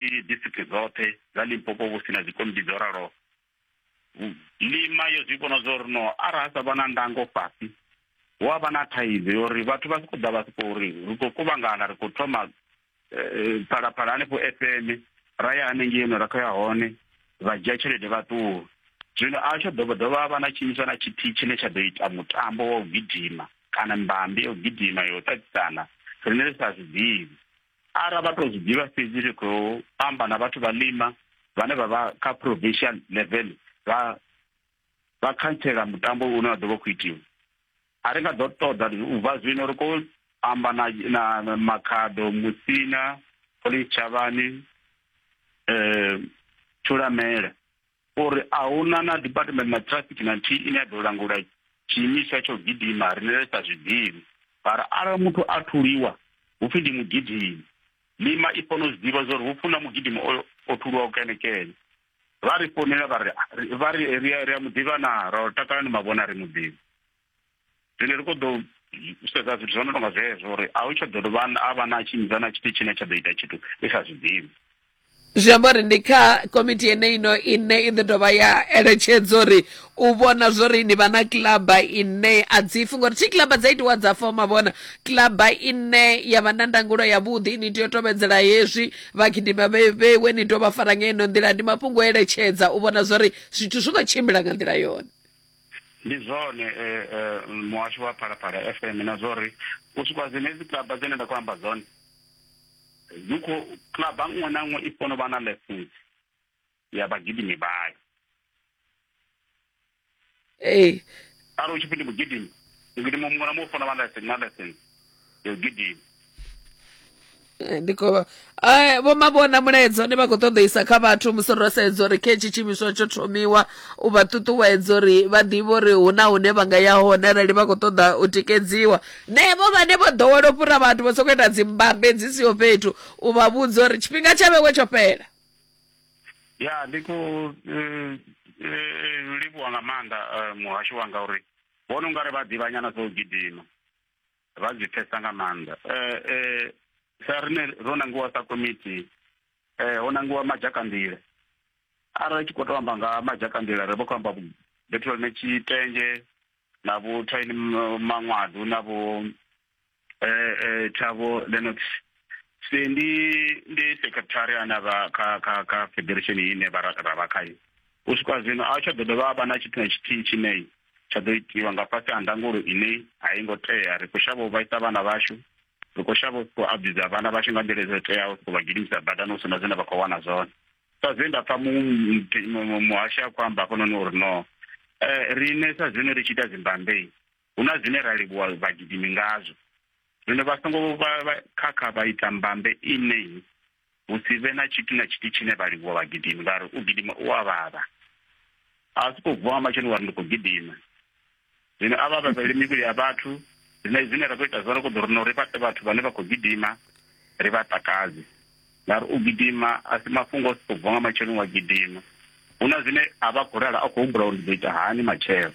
i district dzoṱhe dza limpopo vhu si na dzikomiti dzo ralo lima yo zwi vhona zwo ri no arali ha sa vha na ndango fhasi hu a vha na thaidzo yo uri vhathu vha si khou ḓa vha si khou ri ri khou kuvhangana ri khou thoma eh, phalaphala hanefho fm ra ya hanengei no ra khou ya hone vha dzhia tshelede vha ṱuwa zwino a tsho dovha dovha vha na tshiimiswa na tshithihi tshine tsha ḓo ita mutambo wa u gidima kana mbambi ya u gidima yo u ṱaṱisana rine ri sa zwi ḓivhi ara vha to zwi ḓivha fhedzi ri khou amba na vhathu vha lima vhane vha vha kha provincial level vha vha khantsela mutambo une wa ḓo vha khou itiwa a ri nga ḓo ṱoḓa u bva zwino ri khou amba na na makhaḓo musina police tshavhani um thulamela uri a huna na department na traffic na nthihi ine ya ḓo langula tshiimiswa tsho gidima rine ri sa zwiḓivhi mara arali muthu a thuliwa hu pfhi ndi mugidimi lima i fanela u zwi ḓivha zwauri hu funa mugidimi oyo o thuliwaho kenekene vha ri founela vha ri vha ri ri a muḓivha na ra takalani mavhona ri muḓivhi zwine ri khou ḓo sedza zwithu zwo no tonga zwezwo uri a u tsha ḓo dovha a vha na tshimidza na tshithu tshine tsha ḓo ita tshithu i sa zwiḓivhi zwi amba uri ndi kha komiti yeneino ine i ḓo dovha ya eletshedza uri u vhona zwori ni vha na kilaba ine a dzifi ngori thi kilaba dza itiwa dza foma vhona kilaba ine ya vha na ndangulo yavhuḓi ni tea u tovhedzela hezwi vhagidima vhewe ni tou vha fara ngeino nḓila ndi mafhungo o eletshedza u vhona zwori zwithu zwi khou tshimbila nga nḓila yone Ndi zwone muhasho wa Phalaphala FM na zwori u swika dzenedzi club dzine nda khou amba dzone dzi kho club nngwe na nngwe i funa u vha na lessons ya vhagidimi vhayo ee arali u tshi pfhi ndi mugidimi mugidimi muṅwe na muṅwe u funa u vha na lessons ya gidimi Eh, ndi khou vha- Eh, vho mavhona mulaedza une vha khou ṱoḓeisa kha vhathu musi ro sedza uri khe tshi tshiimiswa tsho thomiwa u vha ṱuṱuwedza uri vha ḓivhe uri hu na hune vha nga ya hone arali vha khou ṱoḓa u tikedziwa nevho vhane vho ḓowela u fhura vhathu vho sokou ita dzimbambe dzi siho fhethu u vha vhudza uri tshifhinga tsha vhewe tsho fhela ya ndi khou eh, eh, livhuwa nga maanḓa eh, muhasho wanga uri vhona ungari vha ḓivhanyana zwo gidima vha zwi pfesa nga maanḓa eh, eh, sa rine ro nangiwa sa komiti eh, ho nangiwa majakanḓila arali tshi khou to amba nga majakanḓila ri vho khou amba bethelone tshitenzhe na vho thaini maṅwadu na vho um thabo lenox se ndi ndi secretary ana vha kha kha kha federation ine ra vha khayo u swika zwino a tsha ḓo dovha a vha na tshithu na tshithihi tshine tsha ḓo itiwa nga fhasi ha ndangulo ine a i ngo tea ri khou shavha u vhaisa vhana vhashu ri khou shavha u sokou abuza vhana vhashu nga nḓila dzo teaho sokou vha gidimisa badani hu si na zwine vha khou wana zwone sa zwe nda pfa muhashi a khou amba hafhanoni uri no um riṋe sa zwino ri tshi ita dzimbambei hu na zwine ra livhuwa vhagidimi ngazwo zwino vha songo khakha vha ita mbambe ine hu si vhe na tshithu na tshithu tshine vha livhuwa vhagidimi ngauri u gidima u a vhavha a si khou vuwa matshelo ngari ndi khou gidima zwino a vha vhavhele mivhili ya vhathu zwine zwine ra khou ita zwone koḓo rino ri fhaṱe vhathu vhane vha khou gidima ri vha takadze ngauri u gidima a si mafhungo o si khou vuwa nga matshelo wa gidima hu na zwine a vha khou rala a khou humbula uri ndi ḓo ita hani matshelo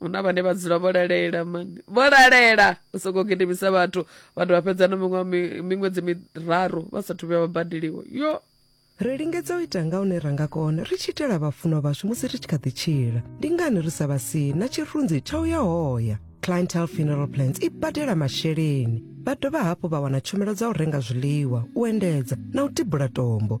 hu na vhane vha dzula vho lalela mani vho lalela u sokou gidimisa vhathu vha dovha fhedza na miṅwe mi- miṅwedzi miraru vha sathu vhuya vha badeliwa yo ri lingedza u ita nga hune ra nga kona ri tshi itela vhafunwa vhashu musi ri tshi kha ḓi tshila ndi ngani ri sa vha si na tshirunzi tsha u ya hoya clientele funeral plans i badela masheleni vha dovha hafhu vha wana tshumelo dza u renga zwiḽiwa u endedza na u tibula tombo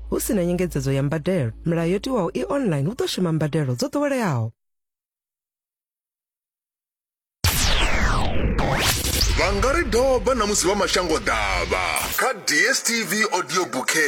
hu si na nyengedzedzo ya mbadelo milayo yo tiwaho i online hu ḓo shuma mbadelo dzo ḓoweleaho vha nga ri doba na musi vha mashango ḓavha kha dstv audio bouquet